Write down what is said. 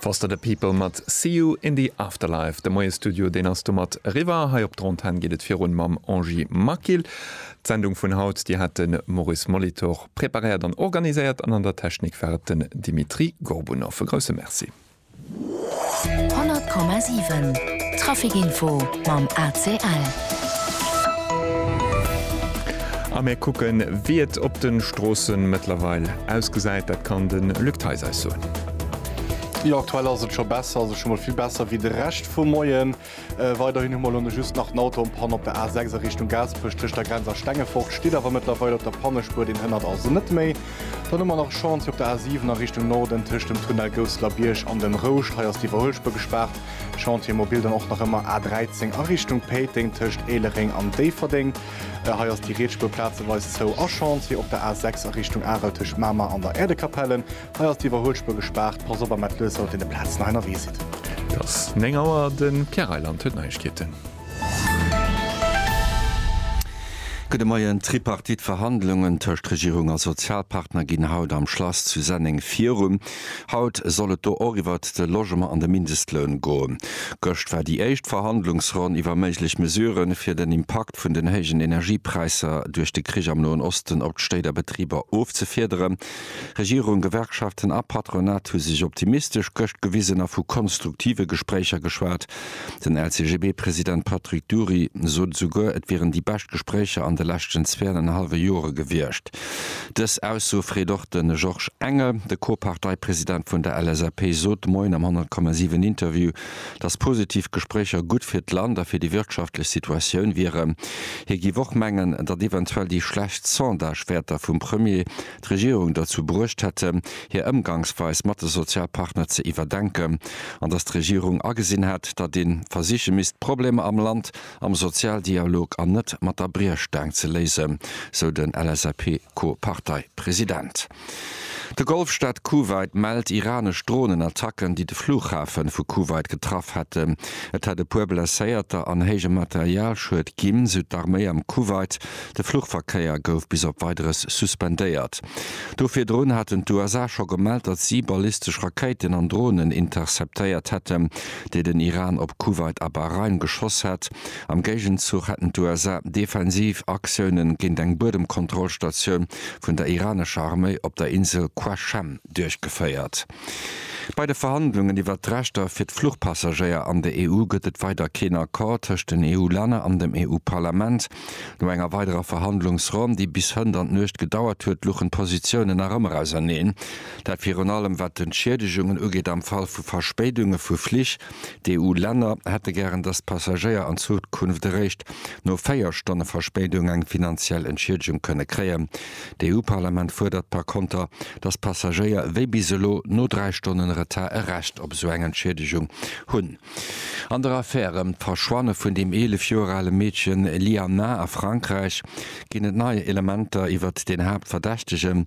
Foster the People mat See You in the Afterlife. De Moiestudio deen ass domat eriwwer. Hei op Dronten geet et virun mam Angie Maquil. D'Sendung vun haut déi hat den Maurice Molitor preparéiert an organiséiert an an der Technik war et den Dimitri Gorbunov. E grousse Merci. 100,7 Trafic Info mam ACL. A mir kucken, wéi et op de Stroosse mëttlerweil ausgesäit. Dat kann de Luc Theis eis soen. Jo, aktuell ass et scho besser, also scho mol vill besser wéi de Rescht vum Moien. Weiderhin hu mer elo just nach den Auto en panne op der A6 a Richtung Gaasperech. Tëscht der Grenz a Stengefort steet awer mëttlerweil op der Pannespuer, deen hënnert also net méi. Dann hu mer nach e Chantier op der A7 a Richtung Norden tëscht dem Tunnel Gousselerbierg an dem Rouscht. Hei ass d'Iwwerhuelspuer gespaart. Chantier mobil dann och nach ëmmer A13 a Richtung Péiteng tëscht Éilereng an Déifferdeng. Hei ass déi riets Spuer plazeweis zou. A Chantier op der A6 a Richtung Arel tëscht Mamer an der Äerdekapelle. Hei ass d'Iwwerhuelspuer gespaart, pass op am Atleus haut deen de Plazen hei nawee sidd. Et ass 9 Auer, de Pierre Reyland huet Neiegkeeten. Gudde Moien, D'Tripartite-Verhandlungen tëscht Regierung a Sozialpartner ginn haut am Schlass zu Senneng virun. Haut soll et do och iwwert de Logement an de Mindestloun goen. Gëscht war déi éischt Verhandlungsronn iwwer méiglech Mesurë fir den Impakt vun den héijen Energiepräisser duerch de Krich am Noen Osten op d'Stéit a Betriber ofzefiederen. Regierung, Gewerkschaften a Patronat hu sech optimistesch gëscht gewisen a vu konstruktive Gespréicher geschwat. Den LCGB-President Patrick Dury sot esouguer, et wieren déi bescht Gespréicher an de leschten zweanenhallwe Jore gewiescht. Dës Ausso freet och de Georges Engel. De Co-Parteipresident vun der LSAP sot Moien am 100,7 Interview, dass positiv Gespréicher gutt fir d'Land a fir déi wirtschaftlech Situatioun wieren. Hie géif och mengen, datt eventuell déi schlecht Sondagewäerter vum Premier d'Regierung derzou bruecht hätten, hir Ëmgangsweis mat de Sozialpartner ze iwwerdenken an datt d'Regierung agesinn hätt, datt ee versiche misst d'Problemer am Land am Sozialdialog an net mat der Briechstaang ze léisen, sou den LSAP-Co-Parteipresident. De Golfstaat Kuwait mellt iranesch Dronenattacken, déi de Flughafe vu Kuwait getraff hätten. Et hätt e puer Blesséierter an héije Materialschued ginn, sou d'Arméi am Kuwait. De Fluchverkéier gouf bis op Weideres suspendéiert. Do virdrun haten d'USA scho gemellt, datt si ballistesch Rakéiten an Dronen interceptéiert hätten, déi den Iran op Kuwait a Bahrain geschoss hätt. Am Géigenzuch hätten d'USA defensiv Aktioune géint eng Buedemkontrollstatioun vun der iranescher Arméi op der Insel Qashem duerchgeféiert. Bei de Verhandlungen iwwert d'Rechter fir d'Fluchpassagéier an der EU gëtt et weider keen Accord tëscht den EU-Länner an dem EU-Parlament. No enger weiderer Verhandlungsronn, déi bis hënt an d'Nuecht gedauert huet, luchen d'Positiounen nach ëmmer auserneen. Dat virun allem wat d'Entschiedegunge ugeet am Fall vu Verspéidunge vu Flich. D'EU-Länner hätte gären, datt d'Passagéier an Zukunft eréischt no véier Stonne Verspéidung eng finanziell Entschiedegung kënne kréien. D'EU-Parlament fuerdert par konter, datt Passagéier wéi bis elo no dräi Stonnen Retard e Recht op esou eng Entschiedegung hunn. An der Affär ëm d'Verschwanne vun dem 11 Joer ale Meedchen Lianah a Frankräich ginn et nei Elementer iwwert den Haaptverdächtegen.